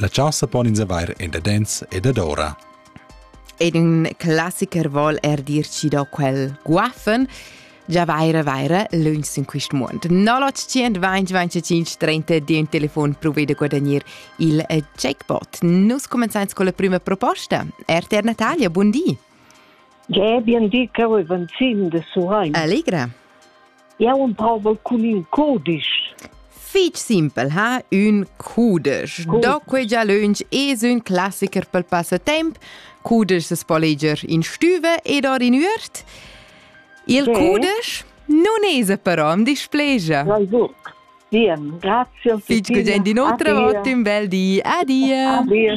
La chasa pon ins avair endadens e dadora. Ed ün classiker vol er dir ci do quel guaffen, già vaira vaira lönch in quist muond. 0900 2025 30 di un telefon provede guadagnare il eh, jackpot. Nus comenzains con la prima proposta. RTR Natalia, buon di. Ja, bien di, Carol van Ziem de Surein. Allegra. Jau emprovel cun in cudisch. Fich simpel ha ün cudesch. Cudesch. Do quei già lönch es ün classiker pel passatemp. Cudesch es po leger in stüva ed or in üert. Il sì. cudesch nun es però am displegia. Na gut. Bien, grazie. Fich gugent in otra vot, un bel di. Adia. Adia,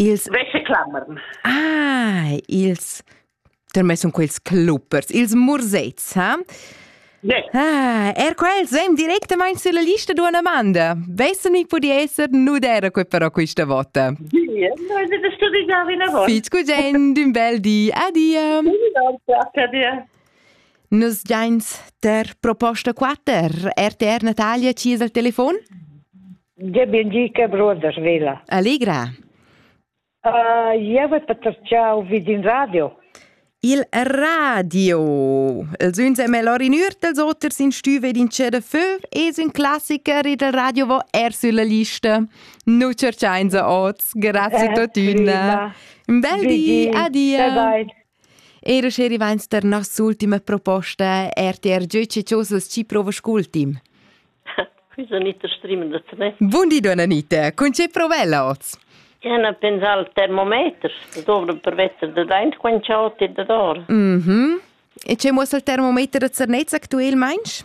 Ils Wäscheklammerten. Ah, ils Termai sun quels cluppers, ils mursets, ha? Yeah. Ah, er quels vem directamain sulla lista d'una domanda. Vessen mi pudi esser nudera quei però questa vota? Sì, noi da studiare una volta. Fitch cugen d'un bel di. Adia. Adia. Nus giains ter proposta 4, RTR Natalia ci al telefon? Gabien gi che broder vela. Allegra. Uh, eu et paterciau vid in radio. Il radio. Els uns è melhor in ür dels oters in stüve din c'è de feu e un classiker il radio vo er sulla lista. Nu cerchain se oz. Grazie totüna. Un bel di. Adia. Bye bye. Era sche rivains tar nossa ultima proposta, RTR gieu che chosas ci provas cultim. Quisa Anita Strimen da te. Bun di, donna Anita. Con ce provella oz? Ja na pensar al termometer, das dovrem per Wetter da deint quant chaut e da dor. Mhm. E ce muossa il termometer da Zernez actuel, meinst?